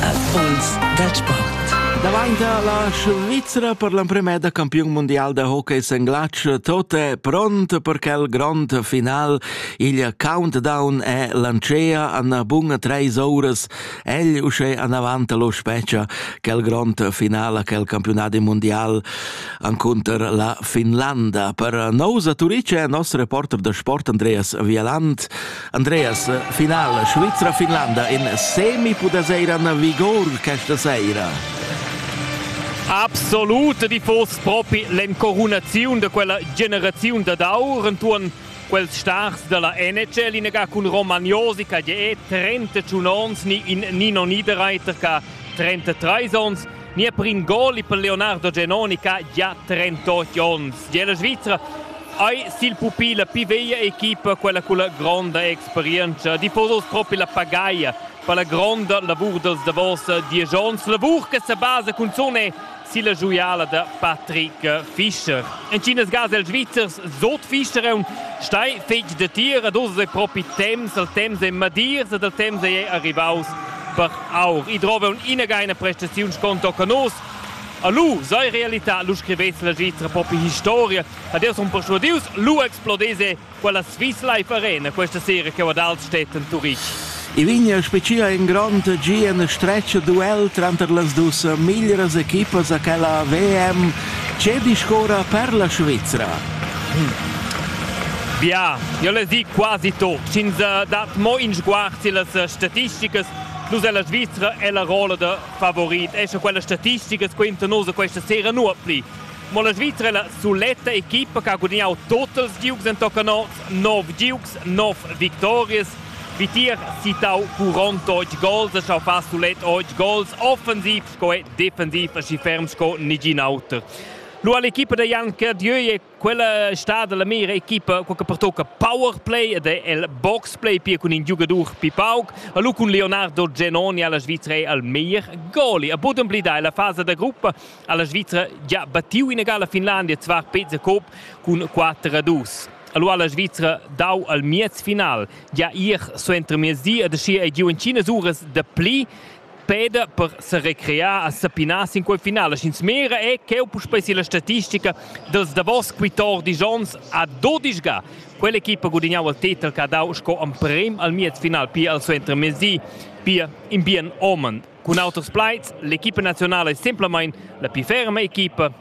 Afons dal sport. Davanti la Svizra per l'emprima da campiun mondial da hockey senglatsch tot è pront per quel grond final. Il countdown è lancea an bun treis oras. Egl usce anavant lo specia quel grond final a quel campionat mondial anconter la Finlanda. Per nosa Turice è nostro reporter da sport Andreas Vieland Andreas, final Svizra-Finlanda in semi pudasera na vigor questa sera. Absolut di foss propi l'encorunaziun da quella generaziun da d'aur entuorn quels stars dalla NHL inaga cun Romagnosi che è 31 ons ni in Nino Niederreiter che 33 ons Nia prin goli per Leonardo Genoni che ha già 38 onns. Della Svizzera ei sil pupi la pi veglia equipa quella con la gronda experienza. Tifosos propi la pagaia per la gronda lavur dels davos diesch onns. Lavur che se basa cunzun è silla giuiala da Patrick Fischer. En Chinas gas els Svizzers Sot Fischer è un stei fetg de tir, ad osa propi temps, al temps è madirs, ad al temps è arrivaus per aur. I drova ina ina prestaziun sconto che nos A lu sei realità, lu scrivez la registra propi historia. Adeus un persuadius, lu explodese quella Swiss Life Arena questa sera che ad Altstedt in Turitg. I vigna specia in grond gi en stretg duel tranter las dus miglieras equipas a quella VM Tgè discorra per la Svizra? Bia, io le di quasi tot, sch'ins dat mo in sguard sillas statisticas, plus è la Svizra è la rolla da favorit, e sche quelle statistiche quinta nos questa sera nuot pli. Ma la Svizra è la soletta equipa che ha guadagnato total giugs in toccanots, 9 giugs, 9 victorias. Wie tier citau Furon Deutsch Goals, es schau far sulet Deutsch Goals offensiv sco è defendiv aschi ferm sco nigin auter. Lu all'equipa da Jan Cardieu è quella stada la mira equipa che pertocca power play ed è il box play pia cun in giugadur pi pauc. Lu cun Leonardo Genoni alla Svizzera è al meglier goli. A Boden blidai la fasa da gruppa alla Svizzera già battiu in egala Finlandia zvar Pezza Cop cun 4 a 2. Allora la Svizzera dau al miez final, ja ir so entro miezdi ed aschi ei giu in Cina uras da pli Peda per serecrear a sapinar sin quei final. La Scinsmira è cheu puspei la statistica dels davos quittordisch onns a dodisch ga. Quell'equipa gudignau il titel che ha dau sco emprem al miez final pia al suenter mesi, pia in bien omen. Cun auters plaids, l'equipa nazionala è semplamein la più ferma equipa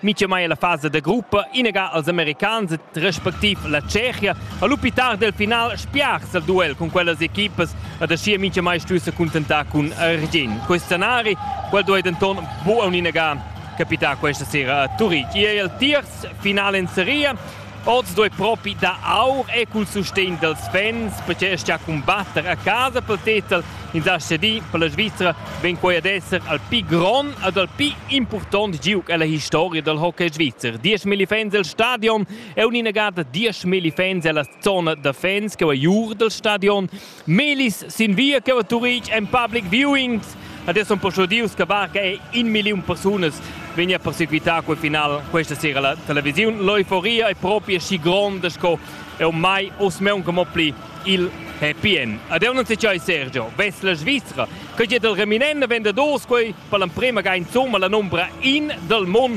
Mitgemai la fasa da gruppa inaga als americans respectiv la Tschechia ha lu pitar del final spiars al duel cun quellas equipas ad aschia Mitgemai stuesse contentar cun Argin. Questo scenari, quel duei denton buca inaga capitar questa sera a Turitg. Era il tiers finale in seria Oz duei propi dar aur e cul sustegn dels fans perche stia cumbatter a casa pel tetel ins ha cedì per la Svizra vegn quei ad esser al pi grond ed al pi impurtont giug ella historia dal hockey svizzer. 10.000 fans el stadion e un'inagada 10.000 fans ella zona da fans che va giur dal stadion Melis sin via che va Turitg en public viewing. Adesso un po' giudius che barca e in miliun persunas vegna a persequitar quel final questa sera la televisione. L'euforia è proprio schi gronda sco è ormai oss meun come pli il happy end. Adesso non si c'è Sergio, vest la Svizzera, che è del reminent vendedors quei per l'emprema ga insomma la nombra in del mondo.